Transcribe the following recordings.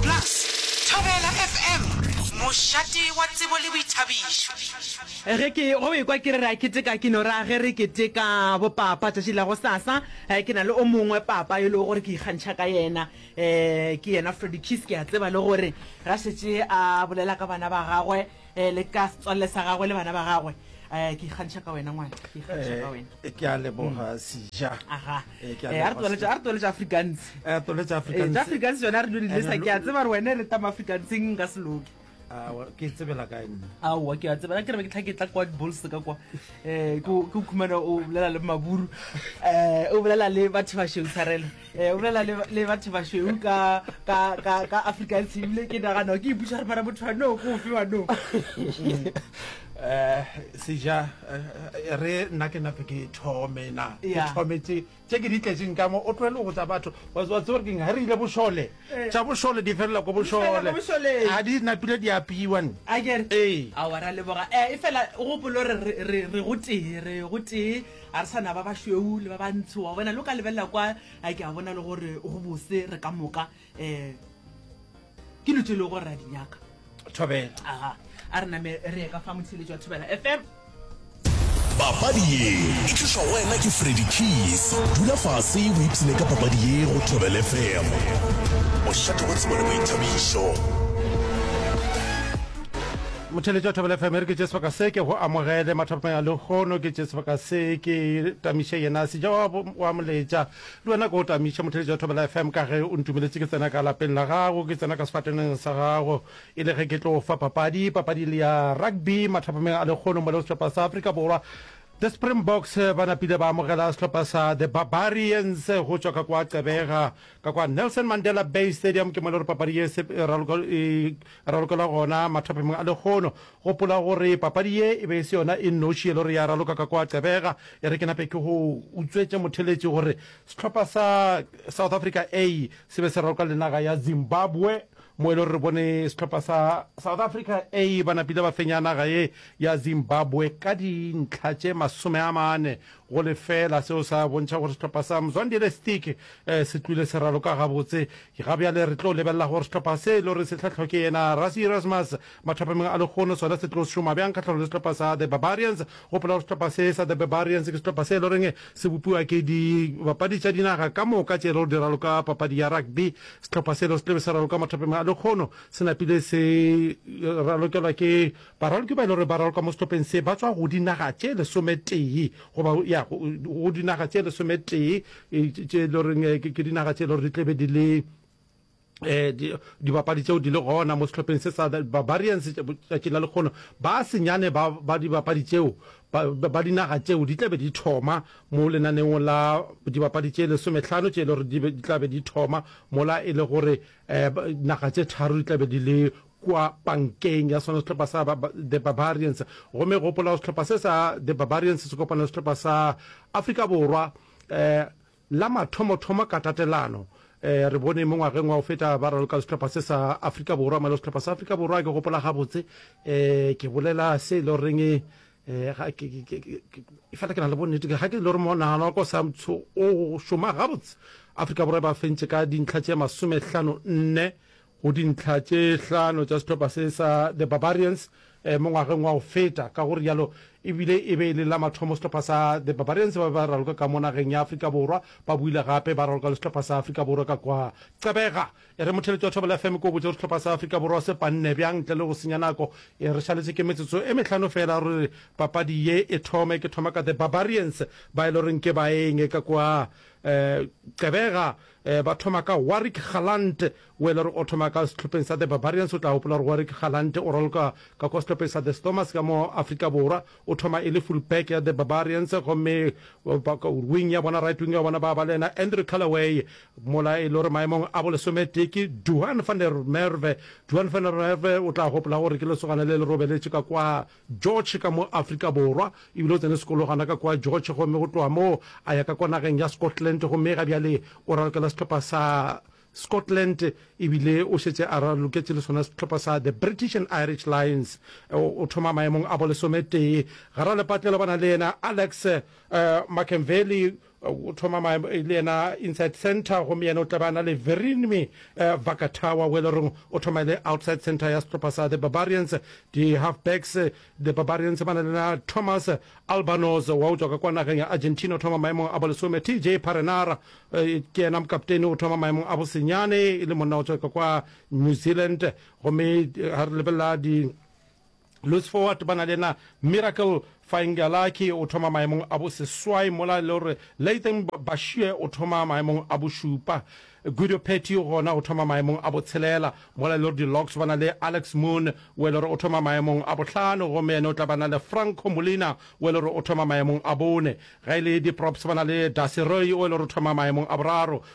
Plus, Thobela FM, mošate wa tsebo le boithabišo. Ge ke go ekwa ke re ra keteka ke no ra ge re keteka bo papa tšatši la go sasa ke na le o mongwe papa yo le gore ke ikgantšha ka yena ke yena Freddy Kiss ke a tseba le gore ga šetše a bolela ka bana ba gagwe Eh, le ka setswalle sa gagwe le bana ba gagwe um ke ikgantšha ka wena ngwana ke ikgantšha ka wena Eh, ke a leboga mm. seja aga Eh, ke a Eh, a re leboga tloletša- a re tloletša africans Eh, tole tša Eh, Afrikaans. tša africans yone a re dule lesa Ene ke a lo- tseba gore wene re tama africanseng nka seloke Ah, wa- ke tsebela kae nna aowa ke a tseba ke re ke tlhaketla kwa dibols ka kwa um ke o khumana o bolela le maburu um o bolela le batho ba sheo tshwarelo Eh, o bolela le batho bašweu ka ka ka ka Africa e tsebile ke nagana ke ipuša re para motho wa no go fe wa no eh seja eh, re nna ke nape ke thome na ke thome tse tse ke di tletseng ka mo o tlwele go tsa batho wa tswa tsore ke nga re ile boshole eh. tsa boshole di felela go boshole a di napile di apiwa ne a ke eh a wa ra le boga eh e fela go polo re re re go tee re go tee A re sa na ba bašweu le ba bantsho, wa bona, le o ka lebelela kwa, a ke a bona le gore go bose re ka moka. Um ke lo tse le gore ra di nyaka. Thobela. Aha, a re name re ye ka fa motshele jwa Thobela FM. Papadi ye e tlišwa go wena ke Freddy Keys. Dula fase o ipsine ka papadi ye go Thobela FM. Bošate go tsebo le boithabišo. Motheeletši wa Thobela FM e re ke tše sebaka se ke go amogele mathapameng a lehono, ke tše sebaka se ke tamiše yena seja wa, wa moletša le wena ke go tamiše motheeletši wa Thobela FM ka ge o ntumeletše ke tsena ka lapeng la gago, ke tsena ka sefateneng sa gago e le ge ke tlo fa papadi, papadi le ya rugby mathapameng a lehono mo le sehlopha sa Afrika Borwa The Springboks ba napile ba amogela sehlopha sa The Barbarians go tšwa ka kwa Gqeberha. Ka kwa Nelson Mandela Bay Stadium ke mo le gore papadi ye se e ralokelwa gona mathophemeng a lekgono. Gopola gore papadi ye e be e se yona e nnoši e le gore ya raloka ka kwa Gqeberha. E re ke nape ke go utswetše motheletši gore sehlopha sa South Africa A se be se raloka le naga ya Zimbabwe mo e le gore re bone sehlopha sa South Africa A ba napile ba fenya naga ye ya Zimbabwe ka dintlha tše masome a mane Go lefeela seo sa bontšha gore sehlopha sa Mzwandile Stick se tlwile se raloka gabotse. Ga bjale re tlo lebelela gore sehlopha se e le gore se hlahlwa ke yena Rassie Erasmus mathapameng a lekgono sona se tlo šoma bjang kgahlanong le sehlopha sa The Barbarians. Gopola gore sehlopha se sa The Barbarians ke sehlopha se e le goreng se bopiwa ke dibapadi tša dinaga ka moka tše e le gore di raloka papadi ya rugby. Sehlopha se e le gore se tla be se raloka mathapameng a lekgono se napile se ralokelwa ke Baralki ba e le gore ba ralka mo sehlopheng se ba tšwa go dinaga tše lesometee goba ya go dinaga tše lesometee tše e le goreng ke dinaga tše e le gore di tlebe di le dibapadi tšeo di le gona mo sehlopheng se sa barbarians tšatšing la lekgono ba senyane ba dibapadi tšeo ba dinaga tšeo di tlabe di thoma mo lenaneong la dibapadi tše lesometlhano tše e le gore di tlabe di thoma mola e le gore naga tše tharo di tlabe di le kua pankeng ya sona sehlopha sa The Barbarians, gomme gopola gore sehlopha se sa The Barbarians se kopana le sehlopha sa Afrika Borwa la mathomothomo ka tatelano. Re bone mo ngwageng wa go feta ba raloka le sehlopha se sa Afrika Borwa, mare sehlopha sa Afrika Borwa ke gopola gabotse, ke bolela se e le goreng efela ke na le bonnete ga ke e le gore monagano wa ka o sa o šoma gabotse, Afrika Borwa e ba fentše ka dintlha tše masomehlano nne go dintlha tše hlano tša sehlopha se sa The Barbarians mo ngwageng wa go feta. Ka go rialo, e bile e be e le la mathomo sehlopha sa The Barbarians ba be ba raloka ka mo nageng ya Afrika Borwa, ba boile gape ba raloka le sehlopha sa Afrika Borwa ka kwa. Qebega e re motheletši wa Thobela FM ke o botše gore sehlopha sa Afrika Borwa se panne bjang. Ntle le go senya nako, e re šaletše ke metsotso e mehlano feela gore papadi ye e thome. Ke thoma ka The Barbarians ba e le goreng ke baeng ka kwa. Qebega Ba thoma ka Warrick Galant, o e le gore o thoma ka sehlopheng sa The Barbarians. O tla gopola gore Warrick Galant o raloka ka kwa sehlopheng sa The Stormers ka mo Afrika Borwa. O thoma e le fullback ya The Barbarians gomme wing ya bona, right wing ya bona, ba ba le yena Andrew Callaway mola e le gore maemong a bolesometee ke Duhan van der Merwe. Duhan van der Merwe o tla gopola gore ke lesogana le le robeletše ka kwa George ka mo Afrika Borwa. E bile o tsene sekolo gona ka kua George gomme go tloga moo a ya ka kwa nageng ya Scotland gomme ga bjale o ralokela sehlopha sa Scotland e bile o šetše a raloketše le sona sehlopha sa The British and Irish Lions. O thoma maemong a bolesometee. Garalepatlelo ba na le yena Alex Makenveli o thoma ma le yena inside center gomme yena o tla ba na le Verinimi eh, Vakatawa o e le goreng o thoma le outside center ya setlhopha sa the barbarians di-half backs the barbarians ba na le na thomas albanos wa o tswa ka kwa nageng ya argentina o thoma maemong a bolesome tj parenara eh, ke yena mokaptene o thoma maemong a bosenyane e le monna o tswa ka kwa new zealand gomme eh, ga re lebelela di Louis Forward ba na le yena Miracle Faingalakhi o thoma maemong a bo seswai mola e le gore Lathan Bashie o thoma maemong a bo šupa. Guido Petty gona o thoma maemong a bo tshelela mola e le gore di-Logs ba na le Alex Moon o e le gore o thoma maemong a bohlano gomme yena o tla ba na le Franco Molina o e le gore o thoma maemong a bone. Ge e le di-Props ba na le Dusty Roy o e le gore o thoma maemong a boraro.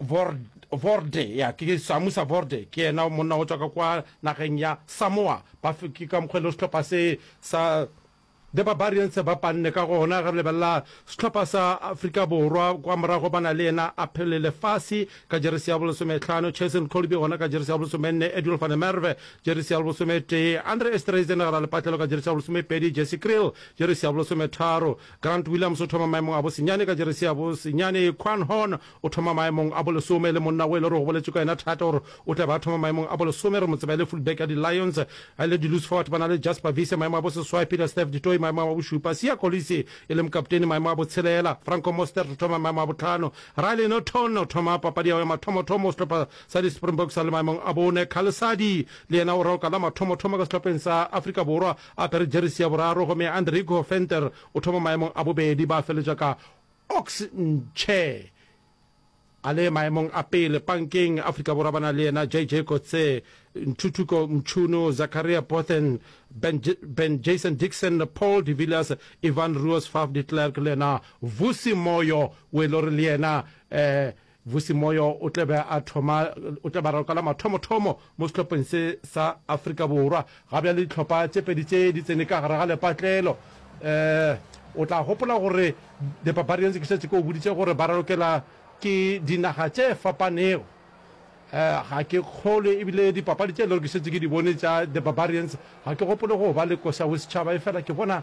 Vorde, ya ke Samusa Vorde ke yena monna go tswa ka kwa nageng ya Samoa ba ke ka mokgwa le sehlopha se sa The Barbarians se ba panne ka gona ge re lebelela sehlopha sa Afrika Borwa kwa morago ba na le yena a phele lefase ka jeresi ya bolesometlhano Cheslin Kolbe gona ka jeresi ya bolesomenne Edwin van der Merwe jeresi ya bolesometee Andre Esterhuizen gera lepatlelo ka jeresi ya bolesomepedi Jesse Kriel jeresi ya bolesometharo Grant Williams o thoma maemong a bosenyane ka jeresi ya bosenyane. Quan Horn o thoma maemong a bolesome, e le monna wo e le gore go boletšwe ka yena thata gore o tla be a thoma maemong a bolesome. Re mo tseba e le fullback ya di-Lions. A e le di-loose forward ba na le Jasper Wiese, maemo a boseswai, Peter Steph du Toit, maemong a bošupa, Siya Kolisi e le mokapteini, maemo a botshelela, Franco Mostert o thoma maemo a bohlano, Riley Naughton o thoma papadi ya go ya mathomothomo sehlopa sa di-Springboks a le maemong a bone, Khalisadi le yena o raoka la mathomothomo ka sehlopheng sa Afrika Borwa. A apere jeresi ya boraro gomme Andrigo Venter o thoma maemong a bobedi, ba feletša ka Ox Nche a le maemong a pele. Pankeng, Afrika Borwa ba na le yena JJ Coetzee, Ntuthuko Mchunu, Zakaria Bothen, Ben, ben Jason Dixon, Paul de Villiers, Ivan Roos, Faf de Klerk le yena Vusi Moyo o e le gore le yena eh, Vusi Moyo o tla be a thoma o tla be a ralokela mathomothomo mo sehlopheng se sa Afrika Borwa. Ga bjale dihlopha tše pedi tše di tsene ka gare ga lepatlelo. Um o tla gopola gore The Barbarians ke šetše ke o boditše gore ba ralokela ke dinaga tše fapanego. Um ga ke kgolwe ebile dipapadi tše e le gore ke šetše ke di bone tša The Barbarians ga ke gopole go ba le koša bosetšhaba efela ke bona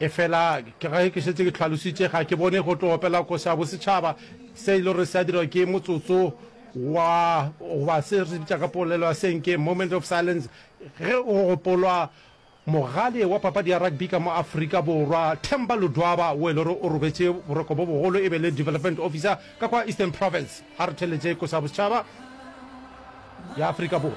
efela ke ge ke šetse ke tlhalositše ga ke bone go tlo opela koša ya bosetšhaba se e le gore se a dirwa ke motsotso wa goba se re bitša ka polelo ya senke moment of silence ge o gopolwa mogale wa papadi ya rugby ka mo afrika borwa themba lodwaba o e le gore o robetše boroko bo bogolo e be le development officer ka kwa eastern province ga re theletše koša ya bosetšhaba ya afrika borwa